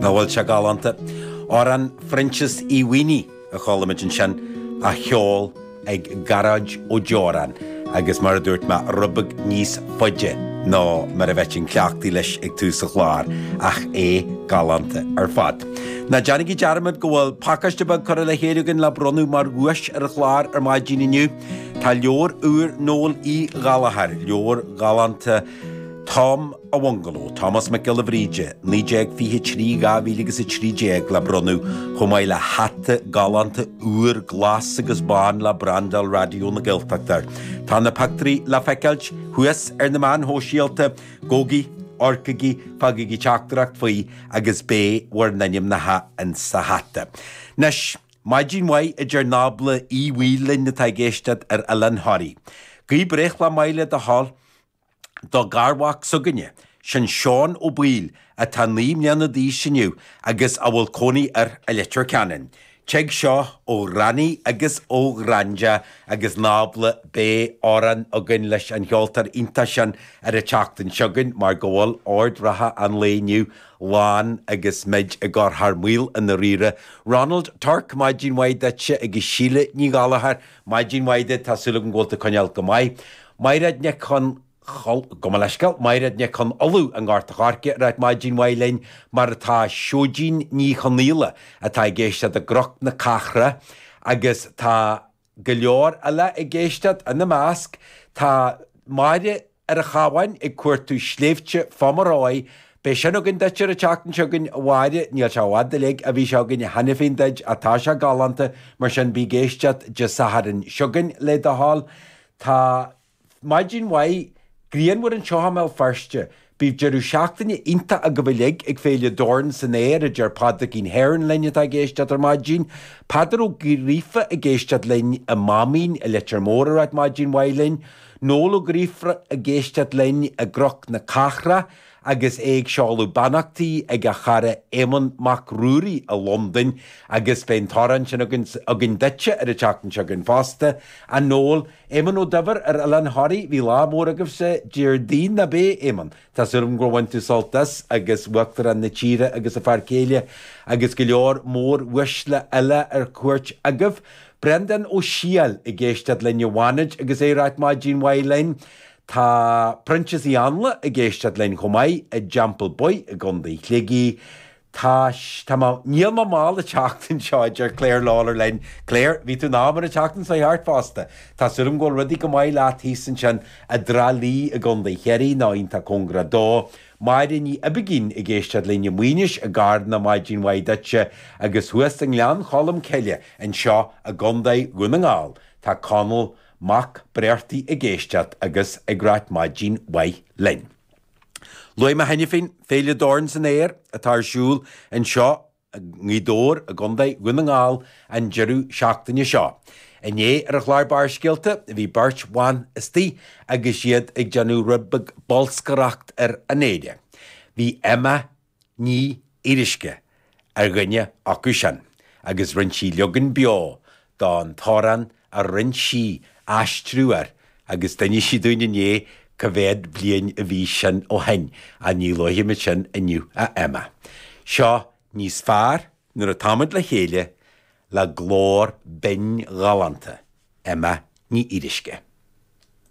Nach bhfuil sé galánta? Amhrán Phroinsias Uí Mhaonaigh a chuala muid ansin, á cheol ag Gearóid Ó Deoráin agus, mar a dúirt mé, rud beag níos faide ná mar a bheinn cleachtaithe leis ag tús an chláir, ach é galánta ar fad. Ná déanaigí dearmad go bhfuil pacáiste beag curtha le chéile againn le bronnadh mar dhuais ar an chlár ar maidin inniu. Tá leabhar úr Noel Uí Ghallchóir, leabhar galánta, Tom an Bhungaló, Tomás Mac Giolla Bhríde, 1923, 2013, le bronnadh, chomh maith le hata galánta úr glas agus bán le brandáil Raidió na Gaeltachta air. Tá na pictiúirí le feiceáil thuas ar na meáin shóisialta, gabhaigí, amharcaigí, fágaigí teachtaireacht faoi agus beidh bhur n-ainmneacha insa hata. Anois, maidin mhaith a deir Nábla Uí Bhaoill linn atá ag éisteacht ar Oileán Thoraí. Guí breithlá maith le do thoil. do gharmhac s'againne, sin Seán Ó Baoill atá naoi mbliana d'aois inniu agus a bhfuil cónaí air i Leitir Ceanainn. Tig seo ó Ghranny agus ó Ghranda agus Nábla. Beidh amhrán againn leis an cheoltóir iontach sin ar an tseachtain seo chugainn mar go bhfuil ord reatha an lae inniu lán agus muid ag cur thar maoil i ndáiríre. Ronald Tuirc, maidin mhaith duitse agus Síle Ní Ghallchóir. Maidin mhaith duit, tá súil agam go bhfuil tú coinneáil go maith. Mairéad Nic Con, gabh mo leithscéal. Mairéad Nic Con Uladh i nGort an Choirce ag ráit maidin mhaith linn, mar atá Seoidín Ní Chonaola atá ag éisteacht i gCnoc na Cathrach agus tá go leor eile ag éisteacht, ina measc tá Máire ar an Chabhán ag cuartú Sléibhte Phomeroy, beidh sin againn duit ar an tseachtain seo chugainn, a Mháire, níl sé i bhfad uilig ó bhí sé againn cheana féin duit, ach tá sé galánta, mar sin bí ag éisteacht Dé Sathairn seo chugainn, le do thoil. Tá maidin mhaith ghrianmhar anseo i mBéal Feirste. Bíodh deireadh seachtaine iontach agaibh uilig ag Féile Dorn san Aer, a deir Pádraigín Heron linn atá ag éisteacht ar maidin. Peadar Ó Gríofa ag éisteacht linn i Máimín i Leitir Móir ag ráit maidin mhaith linn. Noel Ó Gríofa ag éisteacht linn i gCnoc na Cathrach agus é ag seoladh beannachtaí ag a chara Éamonn Mac Ruairí i Londain agus beidh an t-amhrán sin againn duitse ar an tseachtain seo chugainn fosta, a Noel. Éamonn Ó Duibhir ar Oileán Thoraí, bhí lá mór agaibhse Déardaoin, nab é, Éamonn? Tá súil agam gur bhain tú sult as, agus Uachtarán na tíre agus a fear céile, agus go leor móruaisle eile ar cuairt agaibh. Breandán Ó Siadhail ag éisteacht linn i bhFánaid agus é ag ráit maidin mhaith linn. Tá Proinsias Uí Áinle ag éisteacht linn chomh maith i dTeampall Baoith i gContae Shligigh. Tá, tá mé, níl mé mall an tseachtain seo, a deir Clare Lawlor linn. Clare, bhí tú in am ar an tseachtain seo thart fosta. Tá súil agam go bhfuil rudaí go maith leat thíos ansin i dTrá Lí i gContae Chiarraí, nó iontach cóngarach dó. Máire Ní Oibicín ag éisteacht linn i Maínis i gCarna, maidin mhaith duitse. Agus thuas i nGleann Cholm Cille anseo i gContae Dhún na nGall, tá Conall Mac Breartaigh ag éisteacht agus ag ráit maidin mhaith linn. Luaigh mé cheana féin Féile Dorn San Aer atá ar siúl anseo i nGaoth Dobhair i gContae Dhún na nGall an deireadh seachtaine seo. Inné ar an chlár Barrscéalta bhí beirt bhan istigh agus iad ag déanamh rud beag bolscaireacht ar an fhéile. Bhí Emma Ní Fhíoruisce ar dhuine acu sin agus rinne sí leagan beo don t-amhrán a rinne sí aistriú air agus d'inis sí dúinn inné cá mhéad bliain a bhí sin ó shin ach ní luafaimid sin inniu a Emma. Seo níos fearr nuair atáimid le chéile le glór binn ghalánta Emma Ní Fhíoruisce.